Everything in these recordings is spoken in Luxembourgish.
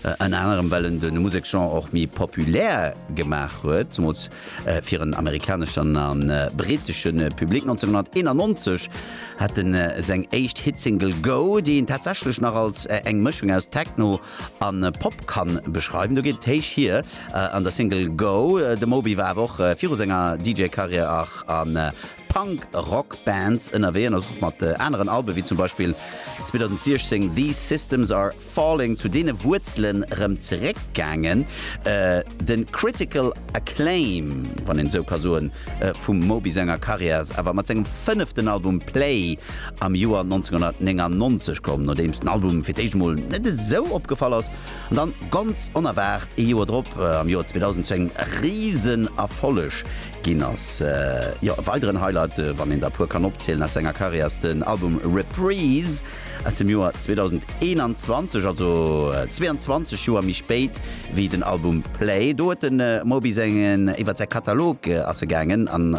Ënner anerem well en de Museksgenre och méi populär gemaach huet, zemools fir en amerikaneschen a brittesche Public. 1991 hat en seng éischt Hitsingle Go, déi een tatsächlech nach als eng Mëschung aus Techno a Pop kann beschreiwen. Do geet et héich hier an der Single Go. De Moby war awer och viru senger DJ-Karriär och a Punk-Rock-Bands ënnerwee an ass och mat aneren Alben, wéi zum Beispill 2016 These Systems Are Falling zu deene Wuerzelen erëm zeréckgaangen. Den Critical Acclaim, wann een esou ka soen, vum Moby senger Karriär ass awer mat sengem fënneften Album Play am Joer 1999 komm, nodeems den Album fir d'éischt emol net esou opgefall ass, an dann ganz onerwaart ee Joer drop, am Joer 2000, zu engem risen Erfolleg ginn ass. Jo, e weideren Highlight, wann een der puer kann opzielen, aus senger Karriär ass den Album Reprise. Aus dem Joer 2021, also 22 Joer méi spéit wéi den Album Play. Do huet de Moby sengen iwwer säi Katalog ass e gaangen an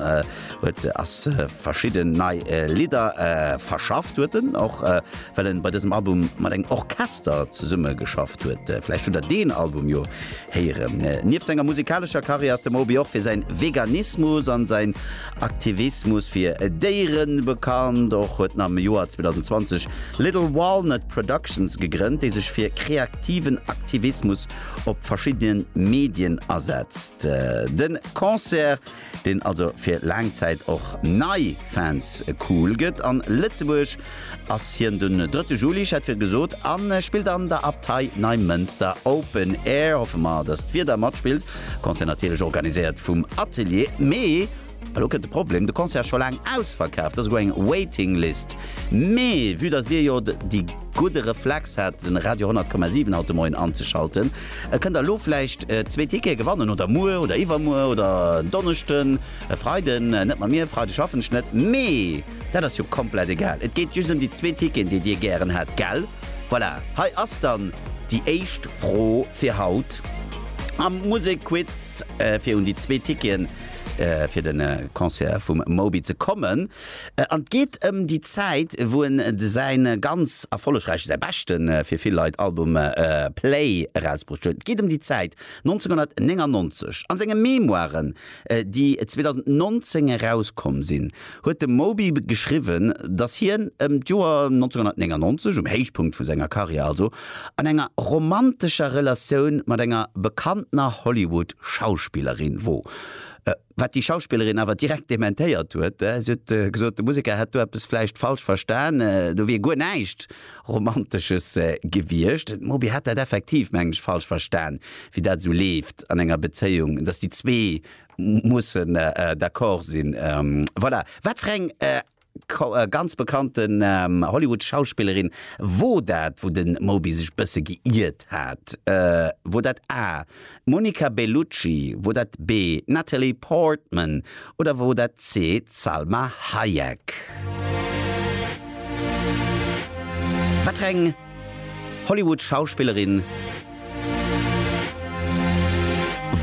huet ass verschidden nei Lidder verschafft. Huet en och well en bei dësem Album mat engem Orchester zesummegeschafft huet. Vläicht hutt der deen Album jo Héieren. Nieft senger musikalescher Karriär ass de Moby och fir säin Veganismus an säin Aktivismus fir Déieren bekannt. Och huet en am Joer 2020 Little Walnut Productions gegrënnt, déi sech fir kreaktiven Aktivismus op verschiddenen Medien asetzt. Den Concert deen also fir laang Zäit och nei Fans cool gëtt. An Lëtzebuerg ass hien den drëtte Juli, ech hat vir gesot, an spillt an der Abtei Neimënster Open Air. Hoffe mer dass d'Wieder matspillt. Concert natierlech organiséiert vum Atelier. Mee elo kënnt de Problem, de Concert ass scho laang ausverkaaft, et ass esouguer eng Waiting List. Mee vue dass dir jo déi gudde Reflex hat den Radio 100,7 haut de Moien anzeschalten, E kënnt elo vläicht zwee Tickete gewannen oder muer oder iwwermuer oder en Donneschden, e Freiden net mat mir, Freide schaffen ech net. Mee dat ass jo komplett egal. Et geet just ëm déi zwee Ticketen, déi Dir gären hätt, gell? Voilà, hei ass dann déi éischt Fro fir haut am Musekquiz, fir un déi zwee Ticketen fir de Concert vum Moby ze kommen. An et geet ëm déi Zäit, wou en säi ganz erfollegräichen, säi beschten, fir vill Leit, Album Play erausbruecht huet. Et geet ëm déi Zäit, 1999. A senge Memoiren, déi 2019 erauskomm sinn, huet de Moby geschriwwen, datt hien ëm d'Joer 1999, um Héichpunkt vu senger Karriär also, an enger romantescher Relatioun mat enger bekanntener Hollywood-Schauspillerin wor. Wat déi Schauspillerin awer direkt dementéiert huet. Si huet gesot, de Museker hätt do eppes vläicht falsch verstan, do wier guer näischt Romantesches gewiescht. Den Moby hätt dat effektiv, mengen ech, falsch verstan, wéi dat esou leeft an enger Bezéiung, datt déi zwee mussen d'accord sinn. Voilà. Wat fir eng ganz bekannten Hollywood-Schauspillerin, wor dat wou den Moby sech bësse geiirt hat? Wor dat A, d'Monica Bellucci, wor dat B, d'Natalie Portman oder wor dat C, d'Salma Hayek? Wat fir eng Hollywood-Schauspillerin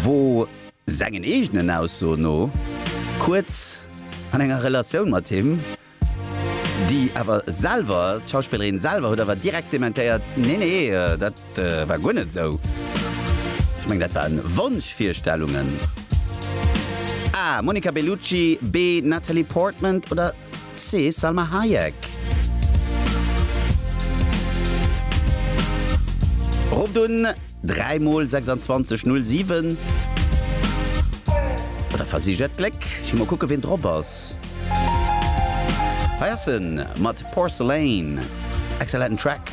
wor Sengen eegenen Aussoen no kuerz an enger Relatioun mat him, déi awer selwer, d'Schauspillerin selwer huet awer direkt dementéiert, Nee, nee, dat war guer net esou, ech mengen dat waren Wonschvirstellungen. A, Monica Bellucci, B, Natalie Portman oder C, Salma Hayek? Rofft un. 3 mol 26 null 7. Bei der versicht dat Gléck. Ech gi mol kucke ween drop ass. Hei ass en mat Porcelain. Excellenten Track.